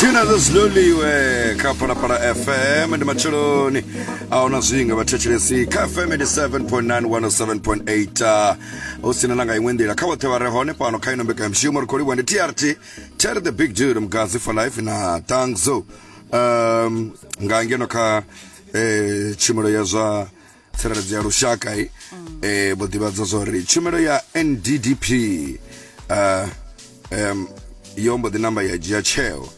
tina za ziloliwe kha phalaphala fm ndi matsheloni aona zwinga vhathetshelesi kha fm 87.9 107.8 hu sina na nga iṅwe nḓila kha vhoṱhe vha re hone fhano kha ino mbekanyamushumo ri khou livhuwa ndi trt terry the big dude mgazi for life na tangzo um, nga ngeno kha eh, tshumelo ya zwa tsireledzo ya lushaka i eh, vho ḓivhadza zwa uri tshumelo ya nddp uh, um, yo mbo ḓi namba ya dzhia tsheo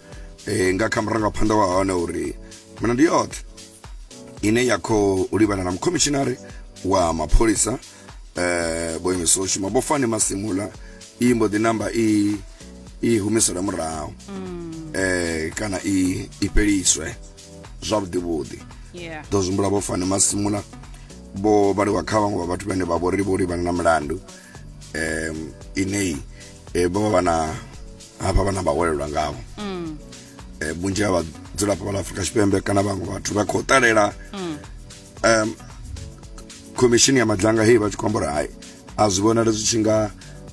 eh, nga kha murangaphanḓa wa hone uri milandu yoṱhe ine ya khou livhana na mukhomishinari wa mapholisa eh, vho imiswa u shuma vho fani masimula i mbo ḓi namba i i humisela murahu eh, kana i i fheliswe zwavhuḓi vhuḓi ḓo zwimbula vho fane masimula vho vhaliwa kha vhaṅwe vha vhathu vhane vha vhori vho livhana na milandu um ineyi eh, vho vha vha na hafha vhana vha welelwa ngavho mm. eh, vhunzhi ha vhadzulapo vha ḽa afurika tshipembe kana vhaṅwe vhathu vha khou ṱalela mm. um khomishini ya madlanga heyi vha tshi khou amba uri hai a zwi vhonali zwi tshi nga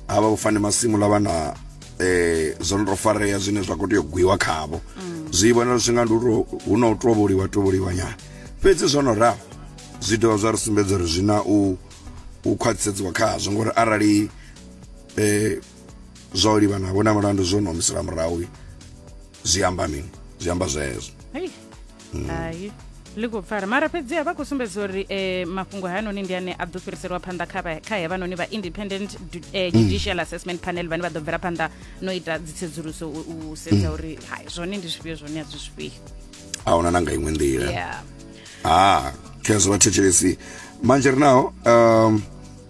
ha vha vhofane masimu ḽa vha na um zwo no tou farea zwine zwa khou tea u gwiwa khavho mm. zwi vhonala zwi tshi nga ndi hu na u tovholiwa tovholiwa nyana fhedzi zwo no ralo zwi dovha zwa ri sumbedza uri zwi na u u khwaṱhisedziwa khazwo ngori arali eh zwa u livha navho na mulandu zwo no humisela murahu zwi amba mini zwi amba zwezwo Mm. hai ḽi khou pfala mara fhedzi a vha khou sumbedza uri eh, mafhungo hayanoni ndi ane a ḓo fhiriselwa phanḓa kha vha- kha hevhanoni vha independent du- eh, Mm. judicial assessment panel vhane vha ḓo bvela phanḓa no ita dzitsedzuluso u u Mm. sedza uri hai zwone ndi zwifhio zwone a zwi zwifhio a huna na nga iṅwe nḓila yeah ha khezwo vha thetshelesi manje ri naho um,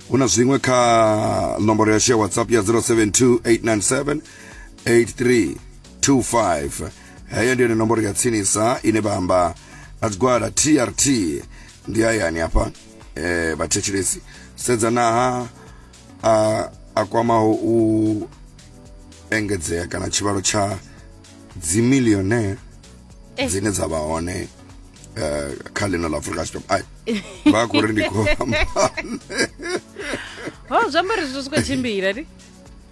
hu na zwiṅwe kha nomboro yashu ya whatsapp ya 072 897 8325 heyo ndi yone nomboro ya tsinisa ine vha amba na tshigwada trt ndi hayani hafha eh, vhathetshelesi sedzanaha a, a kwamaho u engedzea kana tshivhalo tsha dzimilionaire Eh. dzine dza vha hone eh, kha ḽino ḽa afrika tshipembe ai vha khou ri ndi khou amba ho zwi amba ri zwi khou tshimbila ni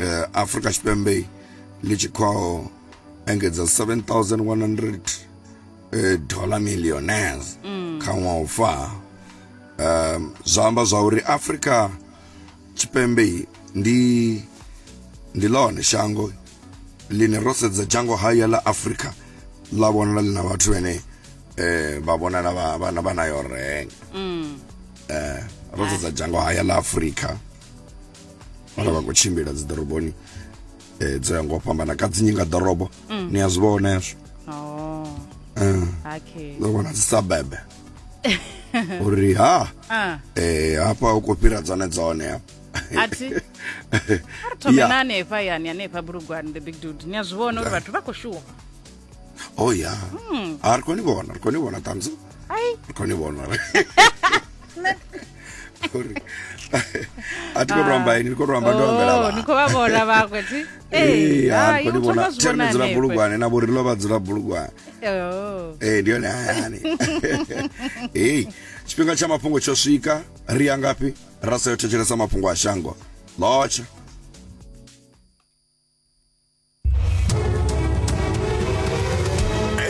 eh, afurika tshipembe ḽi tshi khou engedza 7100 eh, dollar millionaires mm. kha ṅwaha u fa um zwa amba zwa uri afurika tshipembe ndi ndi ḽone shango ḽine ro sedza dzhango haya ḽa afurika ḽa vhonala ḽi na vhathu vhene eh vha vhonala vha na vha na yo renga mm eh ro sedza dzhango haya ḽa Afrika vhana vha khou tshimbila dzi ḓoroboni um dzo ya ngo fhambana ka dzinyi nga ḓorobo mm. ni a zwi vhona hezwo oh. eh. ḓo vhona dzi sabebe uri ha ah. eh, hafha u khou fhira dzone dzone hafha athi ri thome na hanefha yani hanefha bulugwani the big dude ni a zwi vhona uri vhathu vha khou shuwa oh ya hmm. a ah, ri koni vhona ri koni vhona thumbs up ri koni vhona ri uri a ti khou amba ini ni khou amba ndo ambela vha ni khou vha vhona vhaṅwe ti eh ha ni vhona tsene dzula bulugwane na vhori lova dzula bulugwane oh eh ndi yone hani eh tshifhinga tsha mafhungo tsho swika ri ya ngafhi ra sa yo thetshelesa mafhungo a shango lotsha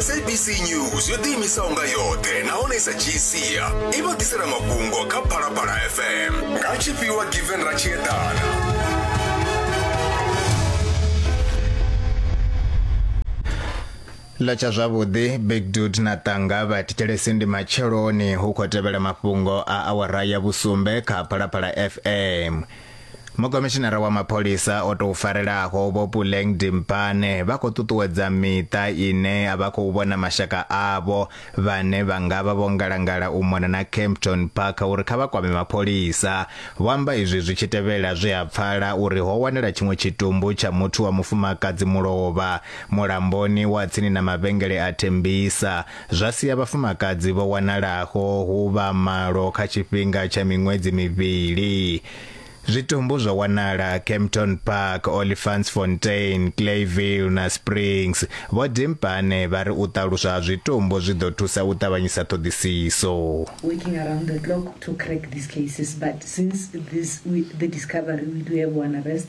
sabc news yo ḓiimisaho nga yoṱhe nahone sa gcia i vha ḓisela mafhungo kha phalaphala fm nga tshifhiwa given ra tshi eḓana ḽa tsha zwavhuḓi big dud na ṱanga vha thetshelesi ndi matsheloni hu khou tevhela mafhungo a awara ya vhusumbe kha phalaphala fm Mukomishinara wa mapholisa o tou farelaho Vho Puleng Dimpane vha khou ṱuṱuwedza miṱa ine a vha khou vhona mashaka avho vhane vha nga vha vho ngalangala u mona na Kempton Park uri kha vha kwame mapholisa. Vho amba izwi zwi tshi tevhela zwe ha pfala uri ho wanala tshiṅwe tshitumbu tsha muthu wa mufumakadzi mulovha mulamboni wa tsini na mavhengele a Tembisa zwa sia vhafumakadzi vho wanalaho hu vha malo kha tshifhinga tsha miṅwedzi mivhili. Zwitumbu zwo wanala Kempton Park, Olifantsfontein, Clayville na Springs. Vho Dimpane vha ri u ṱaluswa ha zwitumbu zwi ḓo thusa u ṱavhanyisa ṱhoḓisiso. working around the clock to crack these cases but since this we, the discovery we do have one arrest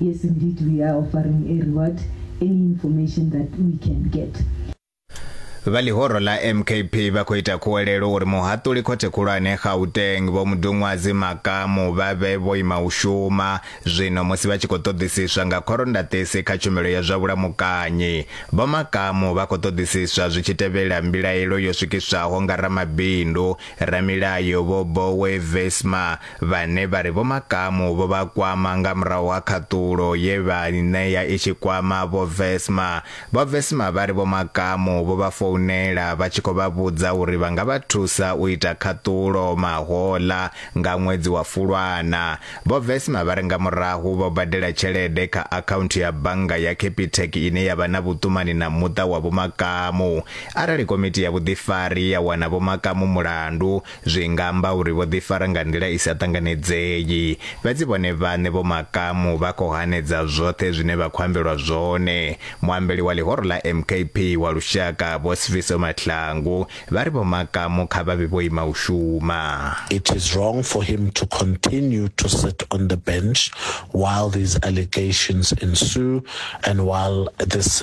Yes indeed we are offering a reward any information that we can get. Vha ḽihoro ḽa MKP vha khou ita khuwelelo uri muhaṱuli khothe khulwane Gauteng Vho Mudunwazi Makamu vha vhe vho ima u shuma zwino musi vha tshi khou ṱoḓisiswa nga khorondaṱisi kha tshumelo ya zwa vhulamukanyi. Vho Makamu vha khou ṱoḓisiswa zwi tshi tevhela mbilaelo yo swikiswaho nga ramabindu, ramilayo Vho Boe Visma vhane vha ri Vho Makamu vho vha kwama nga murahu ha khaṱulo ye vha i ṋea i tshi kwama Vho Vesma. Vho Vesma vha ri Vho Makamu vho vha founela vha tshi khou vha vhudza uri vha nga vha thusa u ita khaṱulo mahoḽa nga ṅwedzi wa Fulwana. Vho Vesma vha ri nga murahu vho badela tshelede kha akhaunthu ya bannga ya Capitec ine ya vha na vhuṱumani na muṱa wa Vho Makamu. Arali komiti ya vhuḓifari ya wana Vho Makamu mulandu, Zwi nga amba uri vho ḓifara nga nḓila i sa ṱanganedzei. Fhedzi vhone vhaṋe vho makamu vha khou hanedza zwoṱhe zwine vha khou ambelwa zwone. Muambeli wa ḽihoro ḽa MKP wa lushaka, Vho Sifiso Mahlangu, vha ri vho makamu kha vha vhe vho ima u shuma. It is wrong for him to continue to sit on the bench while these allegations ensue and while this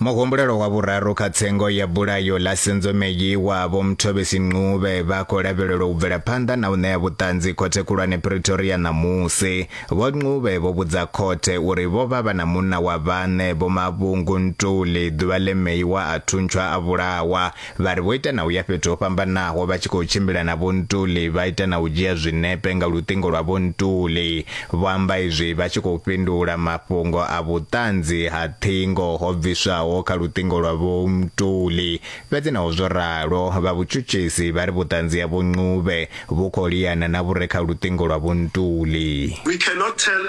Muhumbulelo wa vhuraru kha tsengo ya bulayo ḽa Senzomeyi wa Vho Mthobisi Ncube vha khou lavhelelwa u bvela phanḓa na u ṋea vhuṱanzi khothe khulwane Pretoria ṋamusi. Vho Ncube vho vhudza khothe uri vho vha vha na munna wa vhaṋe Vho Mavhungu Ntuli ḓuvha ḽe Meyi wa a thuntsha a vhulawa Vha ri vho ita na u ya fhethu ho fhambanaho vha tshi khou tshimbila na Vho Ntuli, vha ita na u dzhia zwinepe nga luṱingo lwa Vho Ntuli. Vho amba izwi vha tshi khou fhindula mafhungo a vhuṱanzi ha ṱhingo ho bviswaho kha luṱingo lwa Vho Ntuli. Fhedzi naho zwo ralo, vha vhutshutshisi vha ri vhuṱanzi ha Vho Ncube vhu khou liana na vhu re kha luṱingo lwa Vho Ntuli. We cannot tell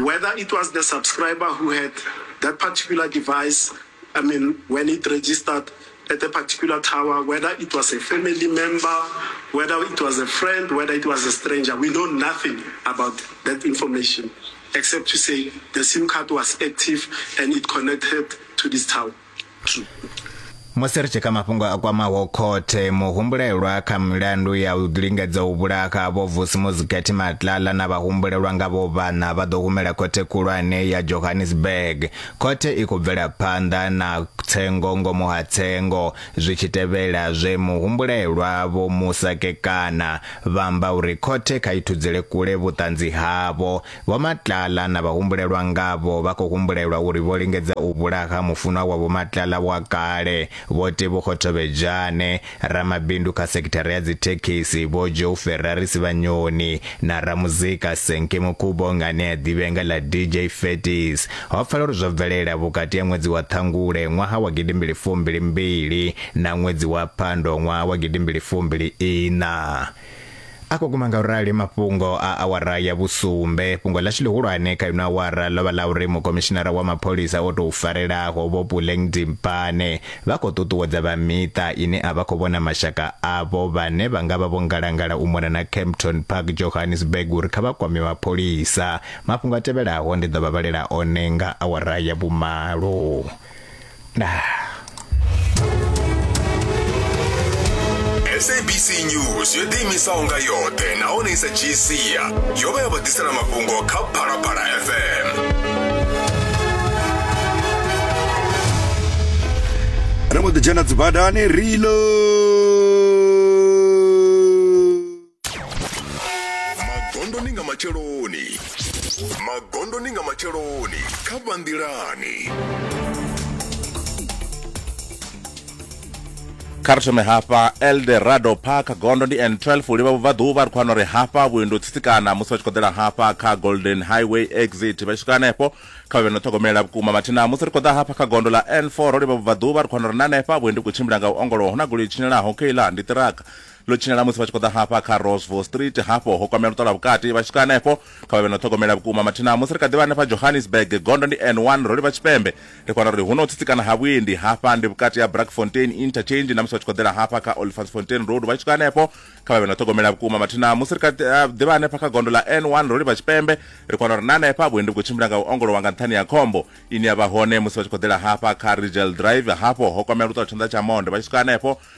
whether it was the subscriber who had that particular device I mean when it registered at a particular tower, whether it was a family member, whether it was a friend, whether it was a stranger, we know nothing about that information except to say the SIM card was active and it connected to this tower. True. musi ri tshi kha mafhungo a kwamaho khothe muhumbulelwa kha milandu ya u lingedza u vhulaha vho vusimuzikhethi matlala na vhahumbulelwa nga vho vhana vha ḓo humela khothe khulwane ya johannesburg Khothe i khou bvela phanḓa na tsengo ngomu ha tsengo zwi tshi tevhela zwe muhumbulelwa Vho Musa Kekana vha amba uri khothe kha i thudzele kule vhuṱanzi havho. Vho Matlala na vhahumbulelwa ngavho vha khou humbulelwa uri vho lingedza u vhulaha mufunwa wa Vho Matlala wa kale, Vho Tebogo Thobejane, Ramabindu kha sekithara ya dzithekhisi Vho Joe Ferrari Sivhanyoni na ramuzika Senke Mukubo nga ane a ḓivhea nga ḽa DJ Fetis ho pfala uri zwo bvelela vhukati ha ṅwedzi wa Ṱhangule ṅwaha wa gidimbili fumbili mbili na ṅwedzi wa Phando ṅwaha wa gidimbili fumbili iṋa. A khou guma nga u rali mafhungo a awara ya vhusumbe. Fhungo ḽashu ḽihulwane kha ino awara ḽo vha ḽa uri Mukomishinara wa Mapholisa o Tou Farelaho Vho Puleng Dimpane vha khou ṱuṱuwedza vha miṱa ine a vha khou vhona mashaka avho vhane vha nga vha vho ngalangala u mona na Kempton Park, Johannesburg uri kha vha kwame mapholisa. Mafhungo a tevhelaho ndi ḓo vha vhalela one nga awara ya vhumalo. sabc news yo ḓiimisaho nga yoṱhe nahone i sa dzhii sia yo vha ya vha ḓisela mafhungo kha phalaphala fm ri mbo ḓi dzhena dzibadani rilo magondoni nga matsheloni magondoni nga matsheloni kha vhanḓilani kha ri thome hafha elde rado park gondo ndi n12 u livha vhubvaḓuvha ri khou wana uri hafha vhuendo tsitsikana musi vha tshi khou ḓela hafha kha golden highway exit vha tshi swika hanefho kha vhe no ṱhogomela vhukuma mathina musi ri khou ḓa hafha kha gondo ḽa n4 ro livha vhubvaḓuvha ri khou wana uri na hanefha vhuendi vhu khou tshimbila nga u ongolowa hu na goloi tshinyalaho keiḽa ndi ṱiraka Ḽo tshinyala musi vha tshi khou ḓa hafha kha Rossville Street. Hafho ho kwamea luṱo lwa vhukati. Vha tshi swika henefho, kha vha vhe na u ṱhogomela vhukuma. Mathina musi ri kha ḓi vha hanefha Johannesburg, gondo ndi N1, ro livha tshipembe. Ri kho wana uri hu na u tsitsikana ha vhuendi. Hafha ndi vhukati ha Brackfontein Interchange na musi vha tshi khou ḓela hafha kha Olifantsfontein Road. Vha tshi swika henefho, kha vha vhe na u ṱhogomela vhukuma. Mathina musi ri kha ḓi vha hanefha kha gondo ḽa N1, ro livha tshipembe. Ri kho wana uri na hanefha vhuendi vhu khou tshimbila nga u ongolowa nga nṱhani ha khombo ine ya vha hone musi vha tshi khou ḓela hafha kha Rigel Drive. Hafho ho kwamea luṱo lwa tshanḓa tsha monde. Vha tshi swika henefho,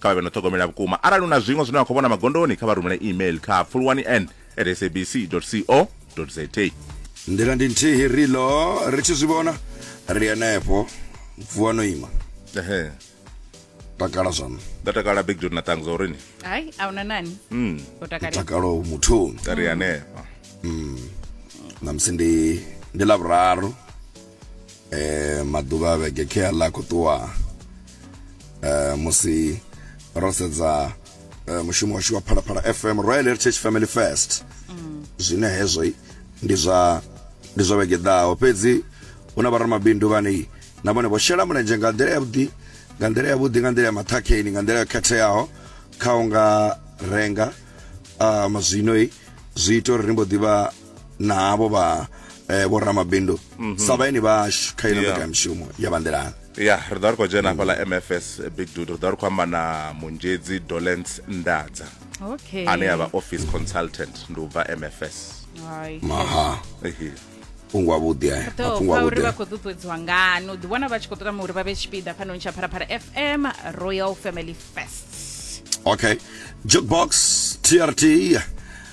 kha vha vhe no ṱhogomela vhukuma arali u na zwiṅwe zwine wa khou vhona magondoni kha vha rumele email kha pfulwani n at sabc co za nḓila ndi nthihi rilo ri tshi zwi vhona ri henefho vuwa no ima ehe takala zwaṋu nda takala big jod na ṱangu zwa urini hayi a huna nani mm. o takale takalo muthuni nda ri hanefha namusi ndi ndi lavhuraru eh, maḓuvha a vhege khe a ḽa khou ṱuwa eh, musi ro sedza eh, mushumo washu wa phalaphala fm royal heritage family first mm. zwine hezwo ndi zwa ndi zwa vhege ḓaho fhedzi hu na vharamabindu vhane na vhone vho shela mulenzhe nga nḓila yavhuḓi nga nḓila yavhuḓi nga nḓila ya maṱhakheni nga nḓila yo khetheaho kha u nga renga um zwino zwi ita uri ri mbo ḓivha na havho vha eh, vho ramabindu mhm. sa vhaeni vhashu kha ino mbekanyamushumo ya vhanḓelana ya ri ḓa ri khou dzhena hafhaḽa mfs big dude ri ḓa ri khou amba na munzhedzi dolence ndadza okay. ane ya vha office consultant ndi u bva mfs maha mafhungo avhuḓi aya mafhungo avhuḓi uri vha khou ṱuṱuwedziwa ngani u ḓiwana vha tshi khou tama uri vha vhe tshipiḓa fhanoni tsha pharapara fm royal family fest okay jukebox trt